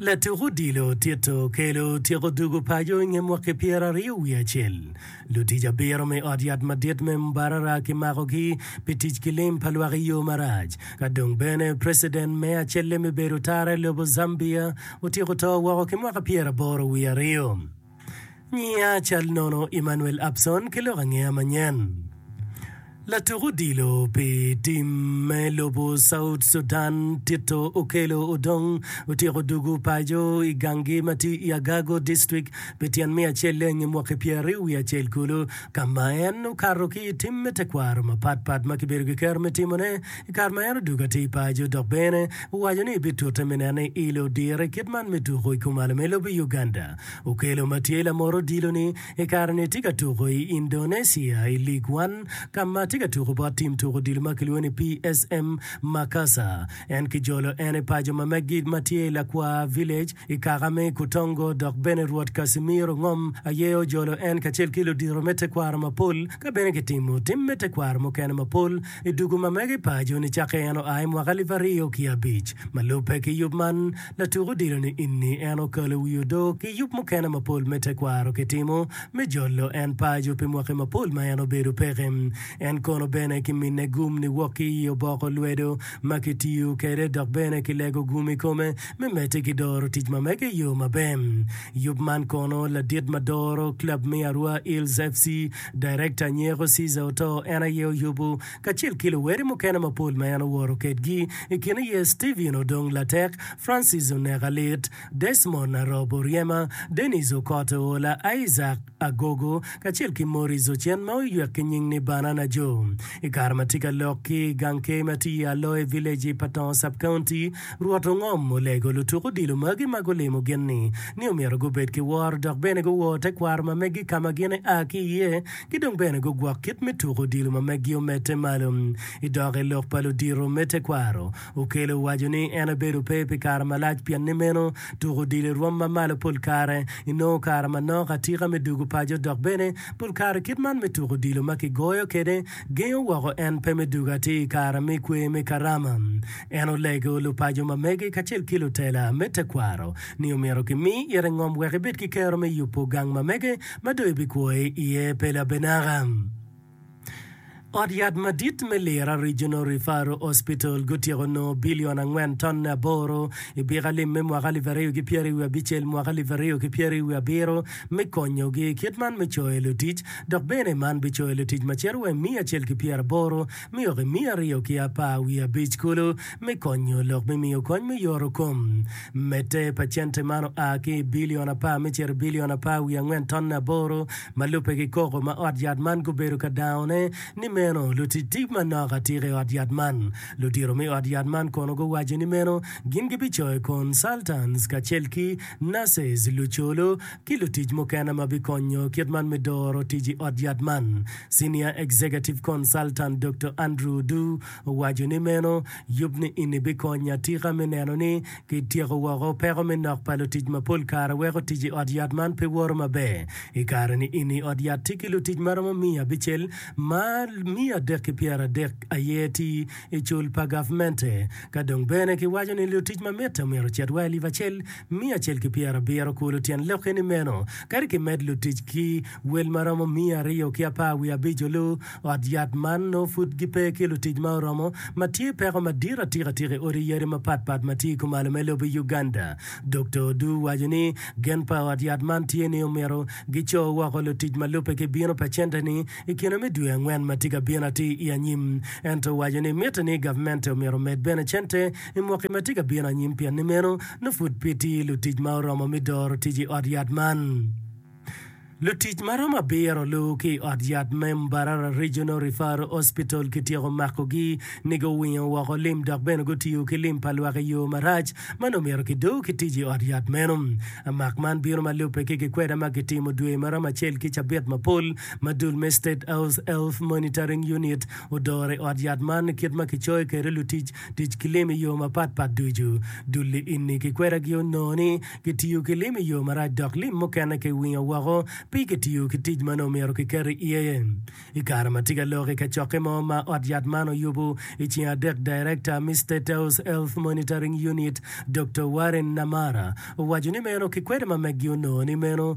Latuk odilo Tito okelo tyeko dwogo paco i nge mwaki pyeraryo wiye acel. Lutic abiro me Ot Yat Madit me Mbarara kimakogi pi tic ki lim pa lwak i yo marac. Ka dong bene preciden me acelle me bedo tara i lobo Zambia otyeko to woko ki mwaka pyeraboro wiye aryo. Nyinga cal nono Emmanuel Abson ki lok angeya manyen latuk odilo pi tim me lobo South Sudan Tito Okello Odong otyeko dugu paco i ganggi ma tye i Agago district pi tyen me acelleng i mwaki pyeraryo wiye acel kulu ka ma en okato ki i tim me tekwaro mapat pat ma kibedo ki kero me timone i kare ma en odugo atir i paco dok bene owaco ni bitute me neno ni ilo dire kit man me tuku i kumalo me lobo Uganda. Okelo ma tye lamot odilo-ni i kare-ni tye ka tuko i Indonesia i League One ka ma tye ka tuko bot tim tuko odilo ma kilwongo ni PSM Makassar. En kijolo en i paco ma Magid ma tye i Lakwaa Village i kaka me Ikutongo dok bene Rwot Casimiro Ngom aye ojolo en kacel ki ludito me tekwaro mapol ka bene kitimo tim me tekwaro mukene mapol i dugu ma mege i paco nicakke en oa i mwaka alip aryo ki abic. Ma lubbe ki yub man, Latuk odilo ni inni en okalo wi odo ki yub mukene mapol me tekwaro kitimo me jolo en pajo pi mwaki mapol ma en obedo peke. En kono bene kimine gum niwok ki i oboko lwedo ma kitiyo kwede dok bene kilego gum i kome me medde ki doro tic ma mege i yo maber. Yub man kono ladit ma doro club me Arua Eels FC, Director, nyeko Caesar Otoo en aye oyubo. kacel ki luwere mukene mapol ma en oworo kedgi. I kine iye Steven odong latek, Francis oneka lit, Desmond arobo ryema, Dennis okot oola, Isaac agogo, kacel ki Maurice ocen ma oywek ki nying ni Banana Joe. I kare ma tye ka lok ki i gang key ma tye i Aloe Village i Patongo Sub-County, Rwot Ongom olego lutuk odilo magi ma gulimo gin-ni ni omyero gubed ki woro dok bene guwor tekwaro ma megi ka ma gin ea ki iye Ki dong bene gugwok kit me tuko odilo ma meggi omedde malo. I dok i lok pa ludito me tekwaro, Okello owaco ni en obedo pe pi kare malac pien ni meno tuko odilo i rwom ma malo pol kare inongo kare manok atika me dugo paco dok bene pol kare kit man me tuko odilo ma kigoyo kwede gengo woko en pe me dugo atir i kare me kwer me Karama. En olego lupaco ma mege kacel ki lutela me tekwaro ni omyero kimi ite ngom wek ebed ki kero me yubo gang ma mege ma dong ibikwo iye pe labenaka. Ot yat madit me Lira Regional Referral Hospital gutyeko nongo bilion angwen tonne aboro i Bika Lim me mwaka alip aryo ki pyeri wiye abicel mwaka alip aryo ki pyeri wiye abiro me konyogi kit man me coyo lutic dok bene man bicoyo lutic macito wa i miya acel ki pyeraboro Myok i miya aryo ki apar wiye abic kulu me konyo lok me miyo kony me yoro kom. Medde, pacente man oa ki i bilion apar me cito i bilion apar wiye angwen tonne aboro ma lubbe ki koko ma ot yat man gubedo ka dangone. Ni meno, lutic tic manok atika i ot yat man. Ludito me ot yat man kono guwaco ni meno gin gibicoyo kon, Sultans, kacel ki nurses, luculu, ki lutic mukene ma bikonyo kit man me doro tic i ot yat man. Senior Executive Consultant Doktor Andrew Du owaco ni meno yub ni eni bikonyo atika me neno ni kityeko woko peko me nok pa lutic ma pol kare weko tic i ot yat man pe woto maber. I kare ni eni ot yat tye ki lutic ma romo miya abicel ma miya adek ki pyera adek aye ti i cul pa gavmente ka dong bene ki waco ni lutic ma mitte omyero ocit wa elip acel Miya acel ki pyera abiro kulu tyen lokke ni meno, kadi ki med lutic ki wel ma romo miya aryo ki apar wiye abico lu. Ot yat man nongo pud gipe ki lutic ma oromo, ma tye peko madit atika tika i odi yadi mapat pat ma tye i kumalo me lobo Uganda. Dokta Odu waco ni gen pa ot yat man tye ni omyero gico woko lutic ma lubbe ki bino pa center ni i kine me dwe angwen ma tye ka bino atir i anyim. Ento owaco ni mitte ni gavmente omyero omed bene center i mwaki ma tye ka bino anyim pien ni meno nongo pud pe tye lutic ma oromo me doro tic i ot yat man. Lutic ma romo abiro luwu ki i ot yat me Mbarara Regional Referral Hospital kityeko makogi ni guwingo woko lim dok bene gutiyo ki lim pa lwak i yo marac ma nongo myero kido ki tic i ot yat meno. Amak man bino ma lubbe ki gikweda ma kitimo dwe ma romo acel ki cabit mapol ma dul me State House Health Monitoring Unit odoro i ot yat man kit ma kicoyo kwede lutic tic ki lim i yo mapat pat ducu. Dul liinni ki kwedagi onongo ni kitiyo ki lim i yo marac dok lim mukene kiwingo woko pi kitiyo ki tic ma nongo myero kiket iye. I kare ma tye ka lok i kacokke mo ma ot yat man oyubo i ceng adek, Darekta me State House Health Monitoring Unit, Doktor Warren Namara, owaco ni meno ki kwede ma meggi onongo ni meno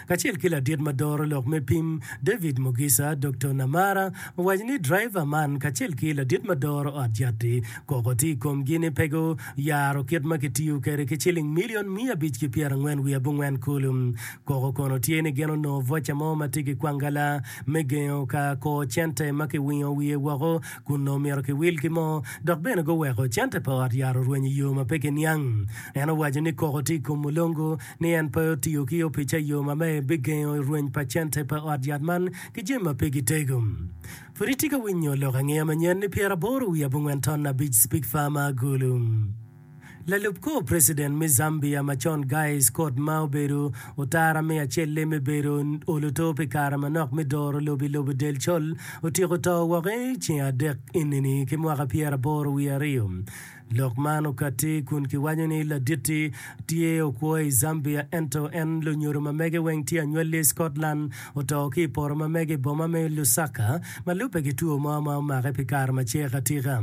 Kacel ki ladit ma doro lok me pim, David Mugisha, Dokto Namara owaco ni draiva man kacel ki ladit ma doro ot jatti koko tye i komgi ni pe guyaro kit ma kitiyo kwede ki ciling milion miya abic ki pyerangwen wiye abongwen kulu. Koko kono tye ni gin onongo voca mo ma tye ki kwangala me gengo ka kor cente ma kiwingo wiye woko kun nongo myero kiwil ki mo dok bene guweko cente pa ot yat orweny i yo ma pe kiniang. En owaco ni koko tye i kom mulongo ni en pe otiyo ki opic ayo ma me bigengo rweny pa cente pa ot yat man ki jami ma pigi tego. Pud itye ka winyo lok angeya manyen ni pyeraboro wiye abongwen ton abic Speke Farmer Agulu, lalub kor preciden me Zambia macon Guy Scott ma obedo otara me acelle me bedo oluto pi kare manok me doro lobo i lobo del col otyeko to woko ceng adek enini ki mwaka pyeraboro wiye aryo. Lok man okatti kun kiwaco ni Laditti tye okwo i Zambia ento en lunyodo ma mege weng tye anywali i Scotland. Oto ki i poto ma mege i boma me Lusaka ma lubbe ki two mo ma omake pi kare ma cek atika.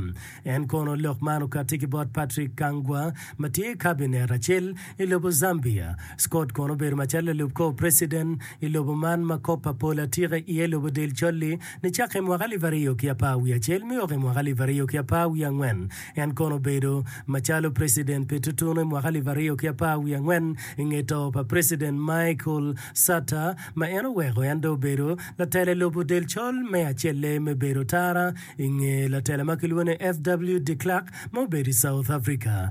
En kono lok man okatti ki bot Patrick Kangwa ma tye i Kabinet acel i lobo Zambia. Scott kono obedo macalo lalub kor preciden i lobo man ma kop pa pol atika iye lobo del colli. Nicakke i mwaka alip aryo ki apar wiye acel me wok i mwaka alip aryo ki apar wiye angwen, en kono obedo macalo preciden pi tutunu i mwaka alip aryo ki apar wiye angwen i nge to pa preciden Michael Satter ma en oweko en dong obedo latela i lobo del col me acelle me bedo tara i nge latela ma kilwongo ni FW de Klerk ma obedo i South Africa.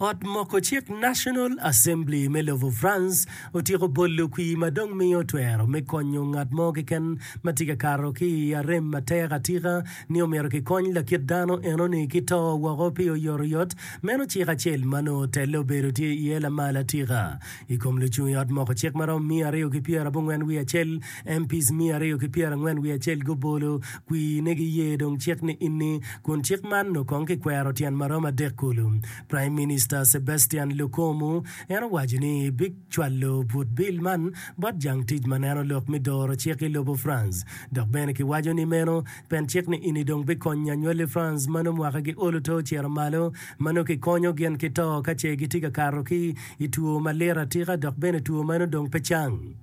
Ot moko cik National Assembly me lobo France otyeko bolo kwir ma dong miyo twero me konyo ngat mo keken ma tye ka kato ki i arem matek atika ni omyero kikony lakit dano enoni ki to woko pi oyotoyot. Meno cik acel ma nongo telle obedo tye iye lamal atika i kom lucung i ot moko cik ma romo miya aryo ki pyerabongwen wiye acel MPs miya aryo ki pyera angwen wiye acel gubolo kwir ne giye dong cik ni inni kun cik man noo kong ki kwero tyen marom adek kulu. Prime Minister Sebastian Lukomu en owaco ni bi cwalo but bill man bot jang tic ma neno lok mi doro cik i lobo France dok bene ki waco ni meno pen cik ni inni dong bi konyo anywal i France ma noo mwaka gi olo to ocito malo ma noo ki konyo gin ki to ka ce gitye ka kato ki i two ma lit atika dok bene two meno dong pe cang.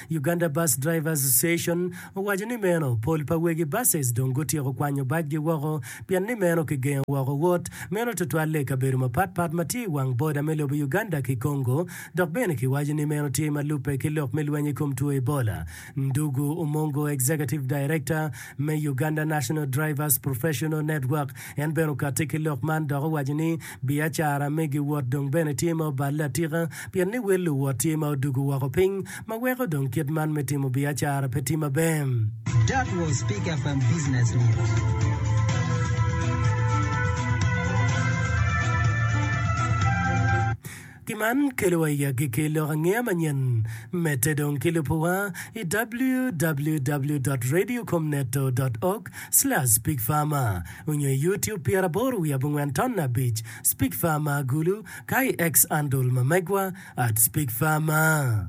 Uganda Bus Drivers Association owaco ni meno pol pa wegi buses dong gutyeko kwanyo bacgi woko pien ni meno kigengo woko wot meno tutwalle i kabedo mapat pat ma tye i wang boda me lobo Uganda ki Congo dok bene kiwaco ni meno tye ma lubbe ki lok me lweny i kom two Ebola. Ndugu Umongo Executive Director me Uganda National Drivers Professional Network en bene okatti ki lok man dok owaco ni Biacara me giwot dong bene tye ma oballe atika pien ni wel luwot tye ma odwogo woko piny ma weko dong kit man me timo biacara pe tye maber. That was Pick FM Business News. Gin man kelowa i agikki lok angeya manyen me te dong ki lubo wa i www.radiocomneto.org/speakfarmer onyo i YouTube Pyeraboro wiye abongwen ton abic speakfarmer gulu ka i X andol ma megwa at speakfarmer.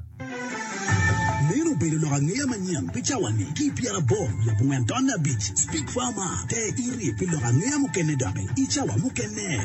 Meno obedo lok angeya manyen pi cawa ni ki i Pyeraboro wiye abongwen ton abic speakfarmer te iri pi lok angeya mukene doki i cawa mukene.